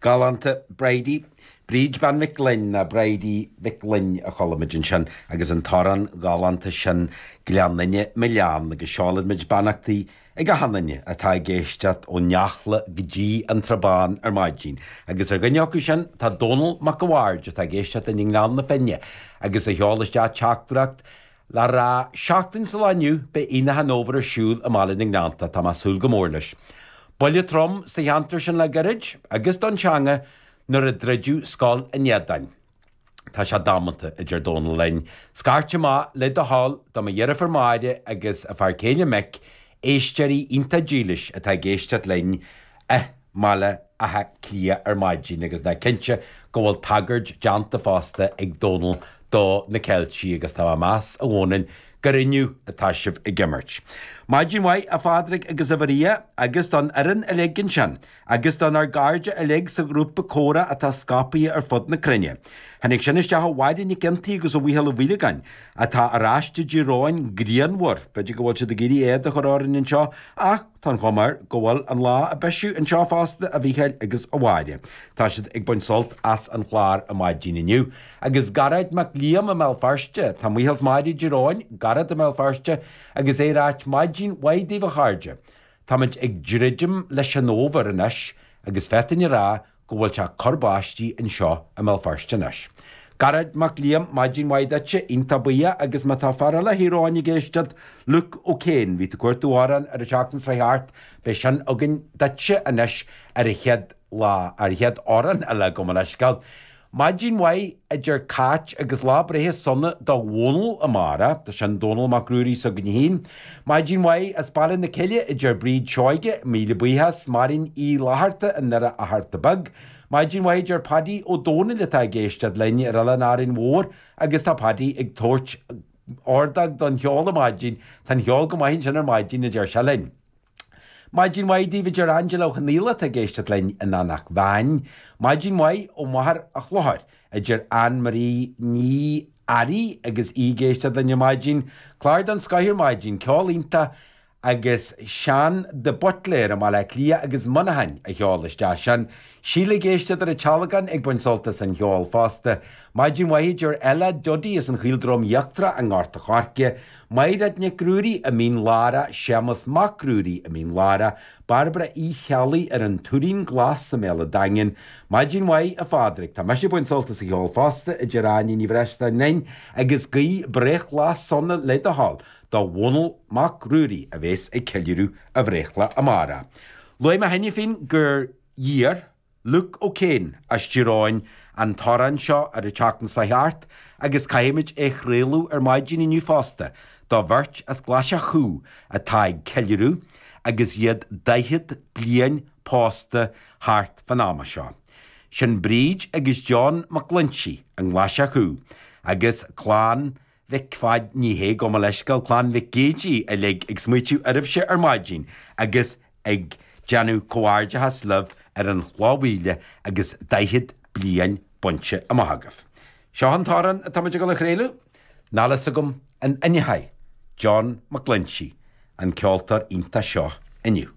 Galánta, Bridie. Bríd Bean Mhic Fhloinn, nó Bridie Mhic Fhloinn a chuala muid ansin agus an t-amhrán galánta sin Gleann Fhinne, Mo Leann agus seolaimid beannachtaí ag achan duine atá ag éisteacht ón Eachla go dtí an Srath Bán ar maidin agus ar dhuine acu sin tá Dónall Mac a Bhaird atá ag éisteacht linn i nGleann na Finne agus a sheol isteach teachtaireacht Le rá seachtain sa lá inniu beidh Aonach an Fhómhair ar siúl i mBaile na nGleannta, tá mé ag súil go mór leis. Buille trom sa cheantar sin le gairid, agus don teanga, nuair a druideadh scoil an Éadain. Tá sé damanta, a deir Dónal linn. Scairt amach le do thoil do mo dheirfiúr Máire agus a fear céile Mick, éisteoirí iontach dílis atá ag éisteacht linn, eh, mBaile Átha Cliath ar maidin agus ná cinnte go bhfuil tagairt deánta fosta ag Dónal do na Ceiltigh agus tá mé ag meas a Dhónaill gur inniu atá sibh ag imirt. Maidin mhaith a Phádraig agus a Mharia agus don fhoireann uilig ansin agus don ár gcáirde uilig sa ghrúpa Comhrá atá scapaithe ar fud na cruinne. Tháinig sin isteach ó Mháire Nic Fhionntaigh agus ó Mhícheál Ó Maolagáin atá ar ais i dTír Eoghain grianmhar, b'fhéidir go bhfuil siad ag iarraidh éad a chur orainn anseo ach. Tá an chuma air go bhfuil an lá ag bisiú anseo fosta, a Mhíchéil agus a Mháire. Tá siad ag baint sult as an chlár ar maidin inniu. Agus Garrett Mac Liam i mBéal Feirste. Tá Micheál 's Máire i dTír Eoghain, Garrett i mBéal Feirste agus é ag ráit maidin mhaith daoibh a chairde. Táimid ag druidim leis an Fhómhar anois agus féadfainn a rá go bhfuil sé ag cur báistí anseo i mBéal Feirste anois. Garrett Mac Liam, maidin mhaith duitse, iontach buíoch agus má tá fear eile Thír Eoghain ag éisteacht, Luke O Kane, bhí tú ag cuartú amhrán ar an tseachtain seo chuaigh thart, beidh sin againn duitse anois ar an chéad lá, ar an chéad amhrán eile gabh mo leithscéal. Maidin mhaith a deir Cáit agus Lá Breithe Sona do Dhónall amárach, tá sin Dónall Mac Ruairí s'againne féin. Maidin mhaith as Baile na Cille a deir Bríd Seoige, míle buíochas Máirín Uí Fhlaithearta i nDoire Fhatharta Beag. Maidin mhaith a deir Paidí Ó Dónaill atá ag éisteacht linn ar Oileán Árainn Mhór agus tá Paidí ag tabhairt ordóg don cheol ar maidin, tá an cheol go maith ansin ar maidin a deir sé linn. Maidin mhaith daoibh a deir Angela Ó Conaola atá ag éisteacht linn in Anach Mheáin. Maidin mhaith ó Mhachaire Chlochair a deir Ann Marie Ní Fhearraigh agus í ag éisteacht linn ar maidin. Clár den scoith ar maidin, ceol iontach agus Seán de Buitléar i mBaile Átha Cliath agus Muineachán a sheol isteach sin. Síle ag éisteacht ar a tealagáin ag baint sult as an cheol fosta. Maidin mhaith a deir Ella, Dodie as an Chaoldroim Íochtarach i nGort a Choirce. Maighréad Nic Ruairí, i Mín Lárach, Séamas Mac Ruairí, i Mín Lárach, Bairbre Uí Cheallaigh ar an Tuairín Glas sa Méala Daingean, Maidin mhaith a Phádraic, tá mise ag baint sult as an gceol fosta, a deir Áine Ní Bhreisleáin linn agus guigh breithlá sona le do thoil do Dhónall Mac Ruairí a bhéas ag ceiliúradh a bhreithlá amárach. Luaigh mé cheana féin gur iarr. Luke O'Kane, as Tír Eoghain, an t-amhrán seo ar an tseachtain seo chuaigh thart agus caithfimid é a chraoladh ar maidin inniu fosta do bheirt as Glaise Chú atá ag ceiliúradh agus iad 40 bliain pósta thart fán am seo. Sin Bríd agus John McGlinchey i nGlaise Chú agus Clann Mhic Pháid, ní hea gabh mo leithscéal clann Mhic Géidigh uilig ag smaoitiú oraibhse ar maidin agus ag déanamh comhghairdeachas libh ar an chloch mhíle agus daichead bliain bainte amach agaibh. Seo an t-amhrán atáimid ag dul a chraoladh, níl a fhios agam an aithneochaidh John McGlinchey an ceoltóir iontach seo inniu.